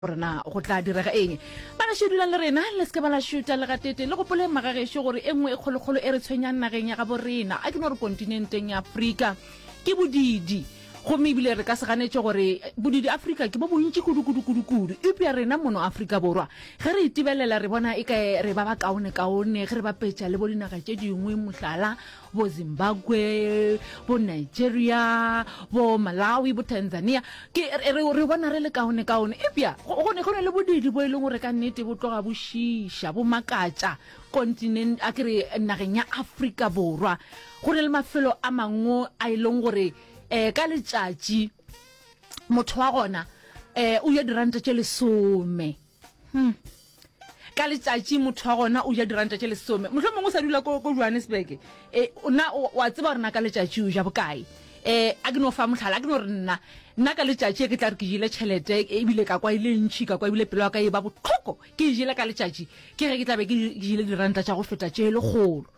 gore na go tla direga eng. Ba gašo dulang le rena, le se ke ba la šuta le gatete. Le gopoleng magagešo gore e nngwe e kgolokgolo e re tshwenyang nageng ya gabo rena, a ke no re kontinenteng ya Afrika, ke bodidi. Gomme ebile re ka se ganetše gore bodidi Afrika ke bo bontši kudu-kudu-kudu-kudu. Eupša rena mono Afrika Borwa, ge re itebelela re bona eka re ba bakaone-kaone ge re bapetša le bo dinaga tše dingwe, mohlala, bo Zimbabwe, bo Nigeria, bo Malawi, bo Tanzania. Ke re, re, re bona re le kaone kaone. Epja go, go, ne, go ne le bodidi bo e leng gore ka nnete bo tloga bo šiša, bo makatša kontinent, a ke re nageng ya Afrika Borwa. Go ne le mafelo a mangwe a e leng gore um ka letšatši motho wa gona um o ja diranta tše lesome hmm. ka letšatši motho wa gona o ja diranta tše lesome motlho mongwe o sa dula ko johannesburg um eh, na wa tseba gore na ka letšatši o ja bokae um a ke no fa motlhala a ke no re nna nna ka letšatši e ke tla re ke jele tšhelete ebile ka kwa e le ntšhi ka kwa ebile pelo ya ka e ba botlhoko ke e jele ka letšatši ke ge ke tlabe ke jele diranta tša go feta tše e le kgolo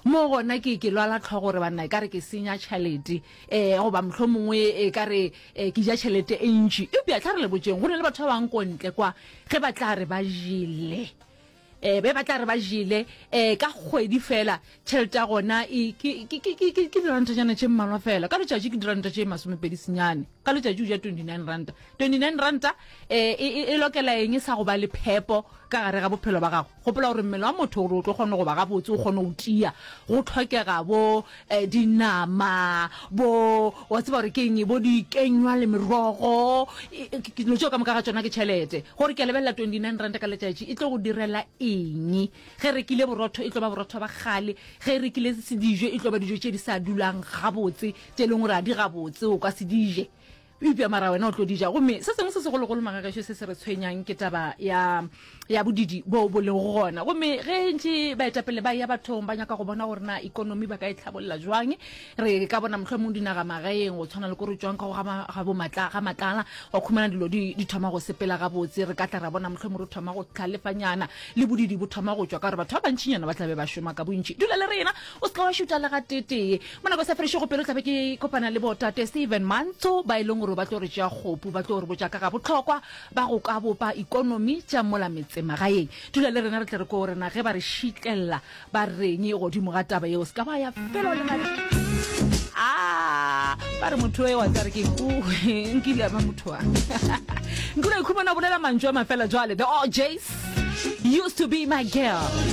Mo gona ke ke lwala tlhogo gore banna e ka re ke senya tšhelete um goba mohlho mongwe e ka re um ke ja tšhelete e ntši eupša tla re le botšeng go na le batho ba bang kontle kwa ge ba tla re ba jele um be ba tla re ba jele um ka kgwedi fela tšhelete ya gona e, ke dirantanyana tše mmalwa fela ka letšatši ke diranta tše masomepedi senyane ka letšatši o ja twenty nine ranta twenty nine ranta um e, e, e lokela eng e sa go ba le phepo ka gare ga bophelo ba gago Gopola gore mmele wa motho gore o tlo kgone go ba gabotse, o kgone go tia, go tlhokega bo dinama, bo, wa tseba gore ke eng, bo dikenywa le merogo, dilo tšeo ka moka ga tšona ke tšhelete. Gore ke a lebelela 29 ranta ka letšatši, e tlo go direla eng? Ge e rekile borotho, e tlo ba borotho ba kgale, ge e rekile dijo, e tlo ba dijo tše di sa dulang gabotse, tše e leng gore ga di gabotse, o ka se di je. Eupša mara wena o tlo di ja. Gomme se sengwe se segologolo, magagešo, se se re tshwenyang ke taba ya, ya bodidi boo bo lego gona. Gomme ge ntše baetapele ba eya bathong ba nyaka go bona gore na ekonomi ba ka e tlhabolla bjang, re ka bona mohlomong dinagamagaeng go tshwana le ko re tšwang ka go ga, ga bo matla, ga matlala, wa khumana dilo di, di thoma go sepela gabotse. Re ka tla ra bona mohlomong re thoma go tlhalefanyana, le bodidi bo thoma go tšwa, ka gore batho ba bantšinyana ba tla be ba šoma ka bontši dula le rena. o se ka wa šuta le ga tetee mo nako e sa fedišego pelo tlabe ke kopana le botate steven mantsho ba e leng gore ba tlo re tšea kgopu ba tlo re botša ka ga botlhokwa ba go ka bopa ikonomi tša mola metsemagaeng dula le rena re tle re ko rena ge ba re šitlelela ba reng godimo ga taba yeo se ka ba ya felo le a ah, ba re motho e wa tsa re ke nkile ba motho wa nkile ikhumana bolela mantšu a mafela jwale the orjays used to be my girl